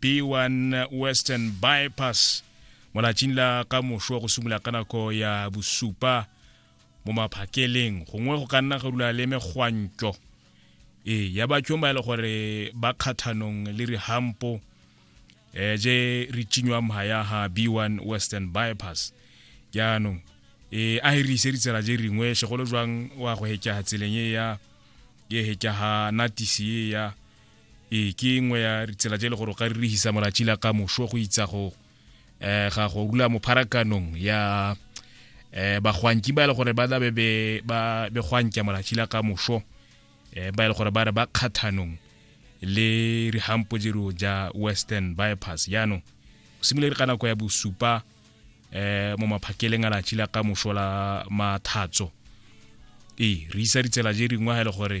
B1 Western Bypass mo latsing la ka mošo go simolola ka nako ya bosupa mo maphakeleng gongwe go ka nna go dula le megwantlo ee ya batšong ba e le gore ba kgathanong le rihampo um je re tšinywang mha ya ha b1 western bypass jaanong um a e re ise ditsela je ringwe segolo jwang wa go hekeha tseleng e ya e hekeha natisi e ya ee ke nngwe ya tsela tse e le gore o ka ririhisa molatši la ka moso go itsa go um ga go rula mo pharakanong ya um bagwanki ba e le gore ba tlabe ba begwanka molatši la ka moso um eh, ba e le gore ba re ba kgathanong le rihampo jero ja western bypass jaanong go simolere ka nako ya bosupa um mo maphakeleng a latši la ka moso la mathatso ee re isa ditsela je dingwe ga e le gore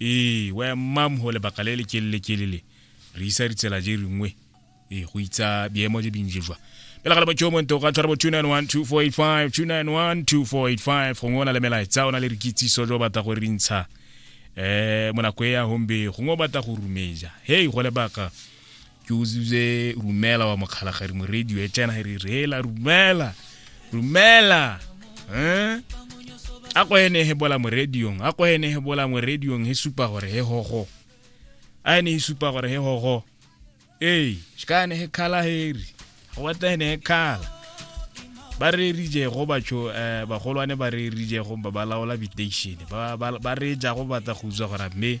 ee wa ya mmam go lebaka le le kelele kelele re isa ditsela je ringwe ee go itsa biemo je binje jwa pela gale motho monto ka tshwara bo 2912485 2912485 gongwe o na le melaetsa o na le re kitsiso jo batla go rintsha eh monako e ya hombe gongwe o batla go rumeja hei go lebaka ke uzuze rumela wa mokgalagari moredi e tsena re reela rumela rumela eh a go ene he bola mo radiong a go ene he bola mo radiong he supa gore he hogo a ene he supa gore he hogo ee shikane he khala heri go batla ene he khala ba re rije go batho eh bagolwane ba re rije go ba laola bitation ba ba re ja go batla go utswa gore mme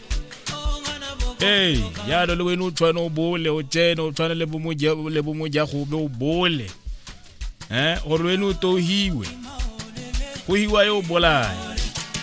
ee yalo le wena o tshwane o bole o tsene o tshwane le bomojagobe o bole um gore wena o tohiwe go hiwa yo o bolaya